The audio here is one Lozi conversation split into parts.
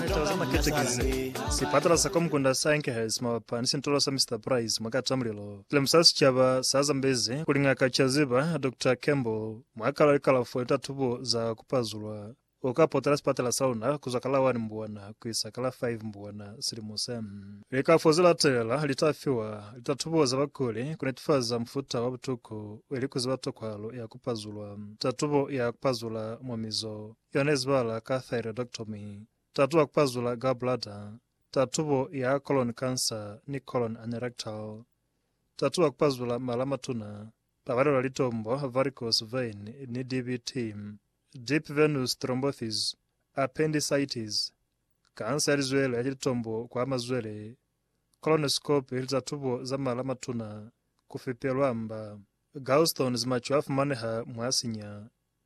Litaba za Maketekise, Sipatala sa Komukunda sa Enkhurst mabapi ni Sintolo sa Mister Price mwa Katamulilo, Silemuso sa Sicaba sa Zambezi kuli Ngaka Chaziba, Doctor Campbell, mwa kala li kalafo ni tatubo za ku pazulwa o ka potela sipatala sa luna kuzwa ka la 1 Mbwana kuisa ka la 5 Mbwana silimo se. Likalafo ze latelela li ta fiwa litatubo za bakuli ku netefaza mufuta wa butuku ili ku ziba tokwahalo ya ku pazulwa, tatubo ya ku pazula mwa mizo, Yona izwala ka thyroidectomy, tatu wa kupazula gallbladder, tatubo ya colon cancer ni colon anerectal. Tatu wa kupazula mala matuna, pabalelo ya litombo, varicose vein, ni DVT, deep venous thrombosis, appendicitis, kansa ya lizwele ya litombo kwa mazwele, colonoscopy ni za tubo za mala matuna, kufipelwa mba. Gallstones maco a fumaneha mwa sinya.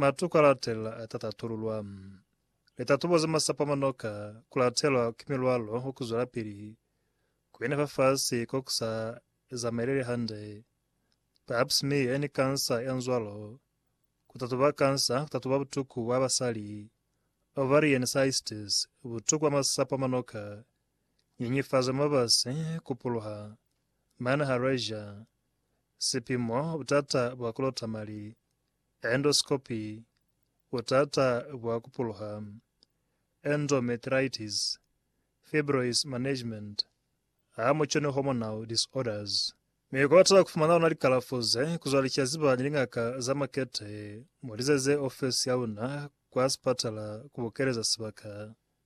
Matu ka latelela a ta tatululwa. Litatubo za masapa manoka ku latelwa ki milwalo wa ku zwelapili ku ina fa fasi ko ku sa zamaeleli hande, pap smear ni kansa ya nzwalo, ku tatuba kansa, ku tatuba butuku bwa basali, ovarian cystes, butuku bwa masapa manoka, nyenyefazo ya mabasi, ku puluha, manha, rager, sipimo, butata bwa ku lota mali. endoscopy, butata bwa ku puluha, endometritis, fibroids management, ha mu cone hormonal disorders. Mi ku bata ku fumana luna likalafo ze, ku zwa licazi ba ni lingaka za makete, mu lizeze ofesi ya luna kwa sipatala ku bokeleza sibaka